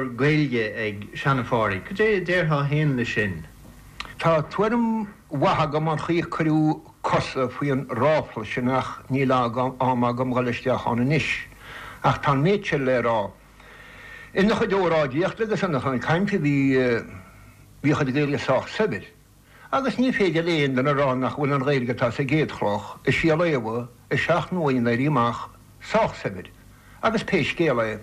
Gaeilge ag Sean-Phádraic. Cad é a déarfá féin leis sin? Tá tuairim mhaith agam an chaoi a cuireadh cosa faoi an ráfla sin ach níl am agam dhul isteach ann anois. Ach tá an méid seo le rá. Ina chuid óráidíochta agus ina chuid cainte bhí a chuid Gaeilge sách saibhir. agus ní féidir le aon duine a rá nach bhfuil an Ghaeilge atá sa gCéad Chloch, i Síol Éabha i Seacht mBua an Éirí Amach sách saibhir, agus pé scéal é,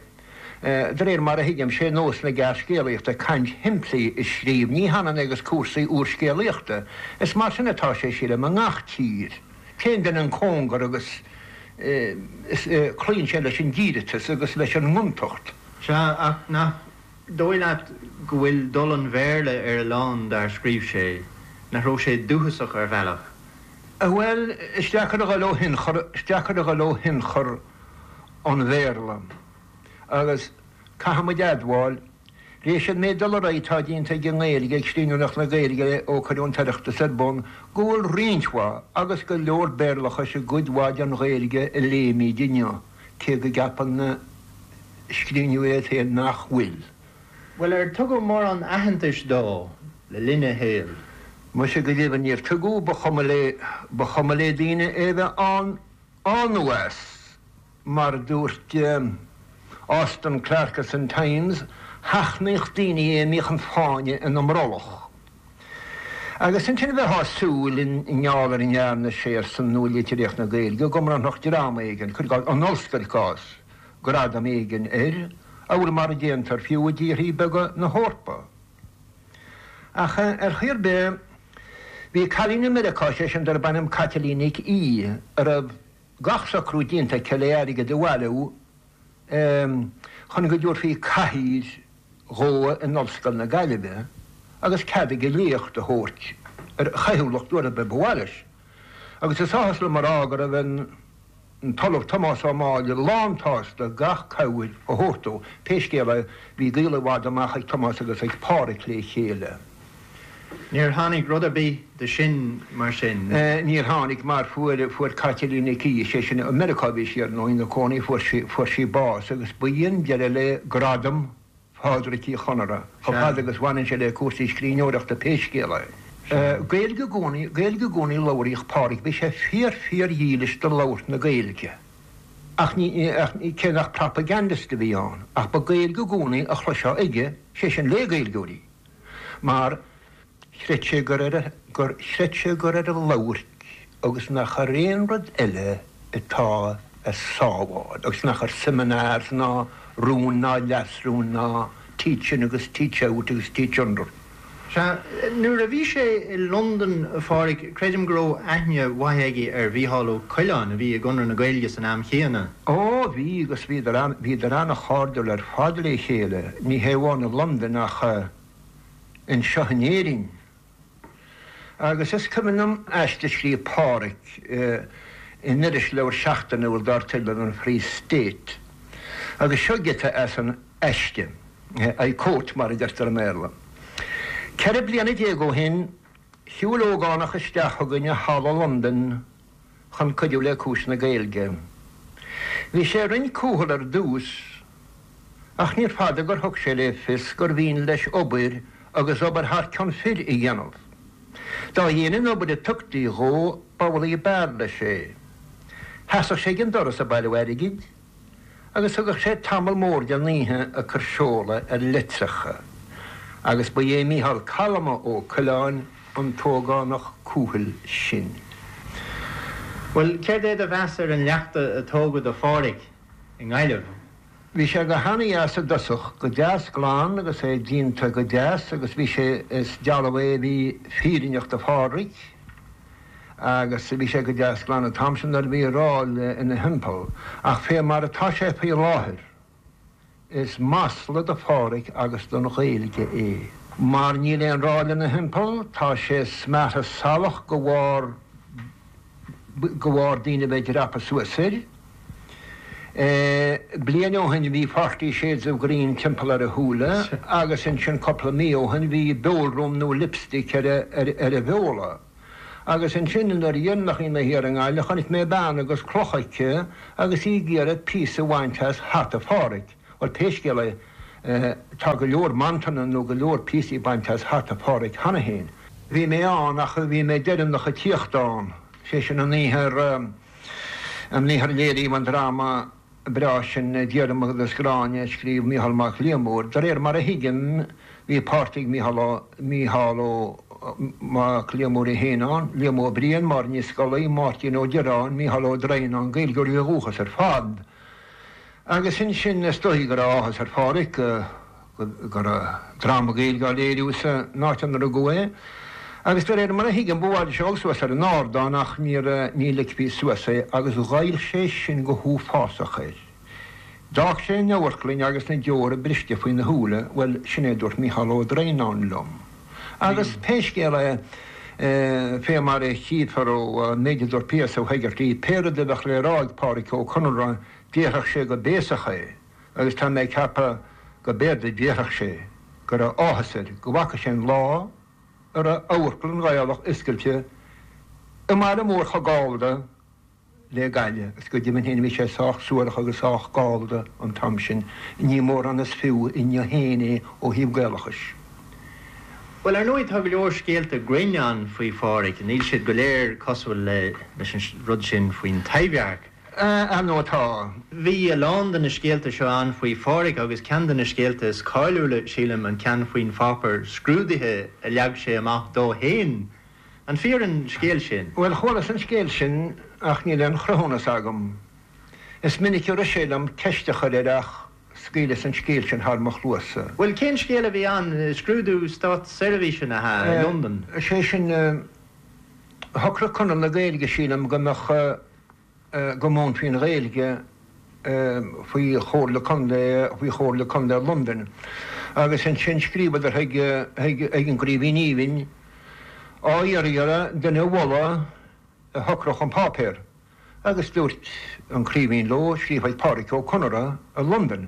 de réir mar a thuigim, sé nós na gearrscéalaíochta caint shimplí a scríobh, ní hionann agus cúrsaí úrscéalaíochta. Is mar sin atá sé, sílim, i ngach tír. Téann duine an cóngar agus is, cloíonn sé leis an díreatas agus leis an ngontacht. Sea, ach nach. dóigh leat go bhfuil dul an Bhéarla ar a lán dár scríobh sé, nach raibh sé dúchasach ar bhealach? Bhuel, is deacair a dhul ó thionchar, is deacair a dhul ó thionchar an Bhéarla agus caithfidh muid a admháil, tar éis an méid dul ar aghaidh atá déanta ag an nGaeilge, ag scríbhneoireacht na Gaeilge ó cuireadh an tOireachtas ar bun, go bhfuil roinnt mhaith, agus go leor Béarlachais i gcuid mhaith den Ghaeilge a léimid inniu. cé go gceapann na scríbhneoirí féin nach bhfuil. Bhuel, ar tugadh mórán aitheantais dó le linn a shaoil? Muise go deimhin níor tugadh, ba chuma le, ba chuma le daoine é a bheith ann nó as, mar a dúirt Austin Clarke san Times, sheachnaíodh daoine é a mbíodh an fáinne ina mbrollach. agus ansin bheifeá ag súil, i ngeall ar a ndearna sé ar son nua-litríocht na Gaeilge, go mbronnfadh dream éigin, cuir i gcás, an ollscoil, cás, gradam éigin air, amhail mar a déantar, fiú, i dtíorthaí beaga na hEorpa. Ach, ar chaoi ar bith, bhí cailín i Meiriceá, sé sin, darb ainm Caitlín Nic Aoidh, a raibh gach socrú déanta aici le airgead a bhailiú, chun go dtabharfaí cathaoir dhó in Ollscoil na Gaillimhe agus cead aige léacht a thabhairt ar a chaothúlacht uair ar bith ba mhaith leis. Agus is áthas liom a rá go raibh an tOllamh Tomás Ó Máille lán-tsásta gach cabhair a thabhairt dó. Pé scéal é, bhí gaol i bhfad amach ag Tomás agus ag Pádraic le chéile. Níor tháinig rud ar bith de sin, mar sin? Níor tháinig, mar fuair, fuair Caitlín Nic Aoidh, sé sin, i Meiriceá a bhí sí ar ndóigh ina cónaí, fuair sí, fuair sí bás agus b'in deireadh le gradam Phádraic Uí Chonaire chomh fada agus bhaineann sé le cúrsaí scríbhneoireachta pé scéal é. Gaeilge i gcónaí, Gaeilge i gcónaí a labhraíodh Pádraic, bhí sé fíor, fíordhílis do labhairt na Gaeilge ach ní, ach ní, cé nach propagandist a bhí ann ach ba Gaeilge i gcónaí a chloisfeá aige, sé sin, le Gaeilgeoirí. mar chreid sé gur chreid sé gur ar a labhairt agus nach ar aon rud eile atá a sábháil agus nach ar seminars ná rúin ná leasrúin ná teach in agus teach out agus teach under. Sea, nuair a bhí sé i Londain, a Phádraig, creidim go raibh aithne mhaith aige ar Mhícheál Ó Coileáin, a bhí i gConradh na Gaeilge san am chéanna. Ó, bhí, agus bhíodar ann, bhíodar an-chairdiúil ar fad le chéile, ní hé amháin i Londain ach anseo in Éirinn. Agus is cuimhin liom aiste a scríobh Pádraig in irisleabhar seachtainiúil dar teideal an Free State agus seo giota as an aiste, I quote mar a deirtear i mBéarla, 'Ceithre bliana déag ó shin, shiúil ógánach isteach chugainn i halla i Londain, chun cuidiú le cúis na Gaeilge. Bhí sé roinnt cúthail ar dtús, ach níorbh fada gur thug sé le fios gur mhian leis obair agus obair thar cion fir a dhéanamh. Dá dhéine an obair a tugtaí dhó, b'amhlaidh a b'fhearr leis é. Sheasadh sé ag an doras ag bailiú airgid. agus thugadh sé tamall mór den oíche ag cur seoladh ar leitreacha, agus ba é Mícheál calma Ó Coileáin an t-ógánach cúthail sin. Bhuel, céard é do mheas ar an leachta a tógadh do Phádhraic i nGaillimh? Bhí sé go hana-dheas i dtosach, go deas glan agus é díonta go deas agus bhí sé, is dealbh é a bhí fírinneach do Phádhraic, agus bhí sé go deas glan an t-am sin nuair a bhí ráil ina thimpeall, ach fé mar atá sé faoi láthair, is masla do Pháraic agus don Ghaeilge é, mar níl aon ráil ina thimpeall, tá sé smeartha salach de bharr de bharr daoine a bheith ag dreapadh suas air. Bliain ó shin bhí Forty Shades of Green timpeall ar a shúile agus ansin cúpla mí ó shin bhí beolruaim nó lipstick ar a bheola. Agus ansin an uair dhéanach a bhí mé thiar i nGaillimh chonaic mé bean agus cloch aici agus í ag iarraidh píosa a bhaint as hata Pháraic. Bhuel pé scéal é tá go leor mantanna nó go leor píosaí bainte as hata Pháraic cheana féin. Bhí mé ann ach bhí mé deireanach ag tíocht ann, sé sin an oíche ar, an oíche ar léiríodh an dráma. breá sin Diarmuid agus Gráinne a scríobh Micheál Mac Liammóir. De réir mar a thuigim, bhí páirt ag Micheál, Mícheál Ó, Mac Liammóir é féin ann, Liam Ó Briain, Máire Ní Scolaí, Máirtín Ó Direáin, Mícheál Ó Droighneáin, Gaeilgeoirí ó dhúchas ar fad. Agus ansin, is dóichí go raibh áthas ar Phádhraic go. go raibh dráma Gaeilge á léiriú sa n-áit inar rugadh é, agus de réir mar a thuigim, ba mhaith leis a dhul suas ar an ardán ach níor ní ligfí suas é agus ghoill sé sin go huafásach air. D'fhág sé an amharclainn agus na deora briste faoina shúile, bhuel, sin é a dúirt Mícheál Ó Droighneáin liom. Agus pé scéal é, fé mar a chífear ón méid a dúirt P.S. Ó hÉigeartaigh, pé rud a bheadh le rá ag Pádraic Ó Conaire, déarfadh sé go béasach é. agus tá mé ag ceapadh go mb'fhéidir déarfadh sé go raibh áthas air go bhfaca sé an lá a raibh Amharclann Ghaelach oscailte i mbaile mór chomh Gallda le Gaillimh agus go deimhin féin bhí sé sách suarach agus sách Gallda an t-am sin, ní mórán is fiú inniu féin é ó thaobh Gaelachais. Bhuel, ar ndóigh tá go leor scéalta grinn ann faoi Phádhraic, níl siad go léir cosúil leis an rud sin faoin Taibhdhearc, ar nó atá. Bhí a lán de na scéalta seo ann faoi Pháraic agus ceann de na scéalta is cáiliúla, sílim, an ceann faoin pháipear scrúdaithe a leag sé amach dó féin. An fíor an scéal sin? Bhuel, chualas an scéal sin ach níl aon chruthúnas agam. Is minic a rith sé liom ceist a chur air ach scaoileas an scéal sin thar mo chluasa. Bhuel, cén scéal a bhí ann? Scrúdú státseirbhíseanna i Londain? Sé sin, shocraigh Conradh na Gaeilge, sílim, go mbeadh. go múinfí an Ghaeilge faoi chomhairle contae, faoi chomhairle contae Londain, agus ansin scríobhadar chuig an gCraoibhín Aoibhinn á iarraidh air duine a mholadh a shocródh an páipéar, agus dúirt an Craoibhín leo scríobh chuig Pádraic Ó Conaire i Londain.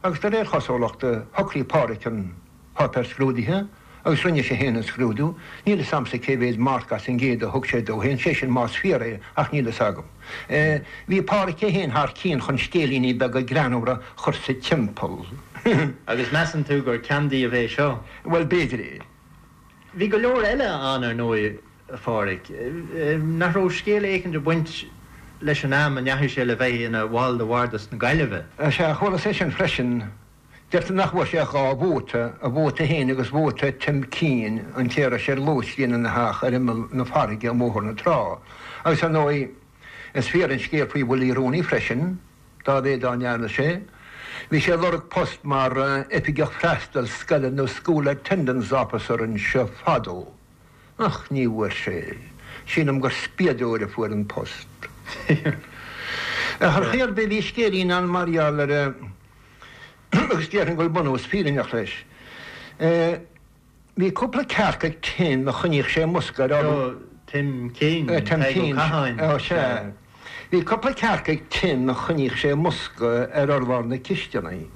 agus de réir chosúlachta, shocraigh Pádraig an páipéar scrúdaithe agus rinne sé féin an scrúdú, níl 'fhios a'msa cé mhéad marc as an gcéad a thug sé dó féin, sé sin más fíor é, ach níl 'fhios agam. Bhí Pádraig é féin thar cionn chun scéilíní beaga greannmhara a chur sa timpeall. Agus measann tú gur ceann díobh é seo? Bhuel, b'fhéidir é. Bhí go leor eile ann, ar ndóigh. Phádhraic, nach raibh scéal éicint ag baint leis an am a ndeachaigh sé le bheith ina bhall de Bhardas na Gaillimhe. Sea, chualas é sin freisin. Deirtear nach bhfuair sé ach dhá vóta, a vóta féin agus vóta Tim Keane, an té a raibh sé ar lóistín ina theach ar imeall na farraige i mBóthar na Trá. Agus, ar ndóigh, is fíor an scéal faoi Willie Rooney freisin, dá mhéad dá ndearna sé. Bhí sé ag lorg post mar Oifigeach Freastail Scoile nó School Attendance Officer anseo fadó. Ach ní bhfuair sé. Sílim gur spíodóir a fuair an post. Ar chaoi ar bith, bhí scéilín ann mar gheall air agus déarfainn go bhfuil bunús fírinneach leis. Bhí cúpla cearc ag Tim a choinníodh sé i mbosca ar. Tim Keane, Tadhg Ó Catháin. Sea. Bhí cupla cearc ag Tim a choinníodh sé i mbosca ar urlár na cisteanaí.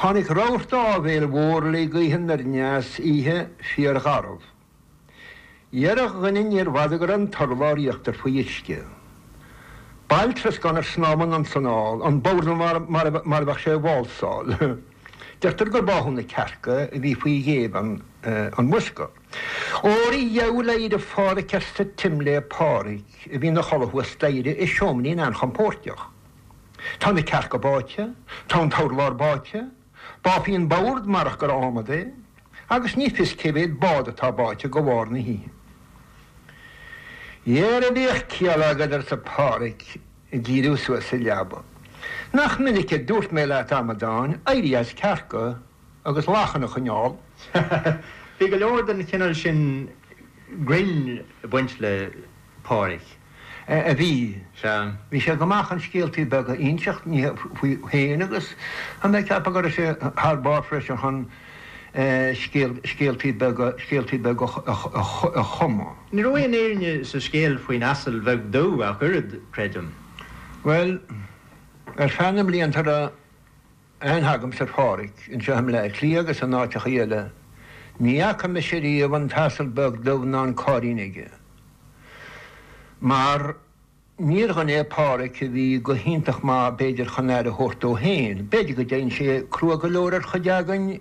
Tháinig rabharta áibhéil mhór le gaoth anoir dheas, oíche, fíorgharbh. Dhera a dhuine níorbh fhada go raibh an t-urlár íochtair faoi uisce. Baill troscáin ag snámh anonn 's anall, an bord mar a bheadh sé ag válsáil. Deirtear gur báthadh na cearca a bhí faoi ghéibheann an bhosca. Éirigh go beo, éirigh a Phádraig arsa Tim le Pádraig a bhí ina chodladh thuas staighre i seoimrín an-chompóirteach. Tá na cearca báite, tá an t-urlár báite, bháfaí an bord marach gur ádhmad é, agus ní fios cé mhéad bád atá báite de bharr na hoíche. Dhera bíodh ciall agat arsa Pádraig ag díriú suas sa leaba. Nach minic a dúirt mé leat, a amadáin, éirí as cearca! agus lachain a choinneáil. Bhí go leor den chineál sin grinn ag baint le Pádhraic. a bhí. Sea. Bhí sé go maith chun scéaltaí beaga a inseacht, ní hea faoi féin agus chuala mé ag ceapadh go raibh sé thar barr freisin chun scéaltaí beaga, scéaltaí beaga a chumadh. Ní raibh aon fhírinne sa scéal faoin asal beag dubh ach oiread, creidim. Bhuel, ar feadh na mblianta a raibh aithne agamsa ar Phádraig anseo i mBleá Cliath agus in áiteachaí eile, ní fhaca mise riamh an t-asal beag dubh ná an cairrín aige. Mar níor dhuine é Pádraig a bhí go hiontach maith b'fhéidir chun aire a thabhairt dó féin. B'fhéidir go dtéann sé crua go leor ar chuid againn,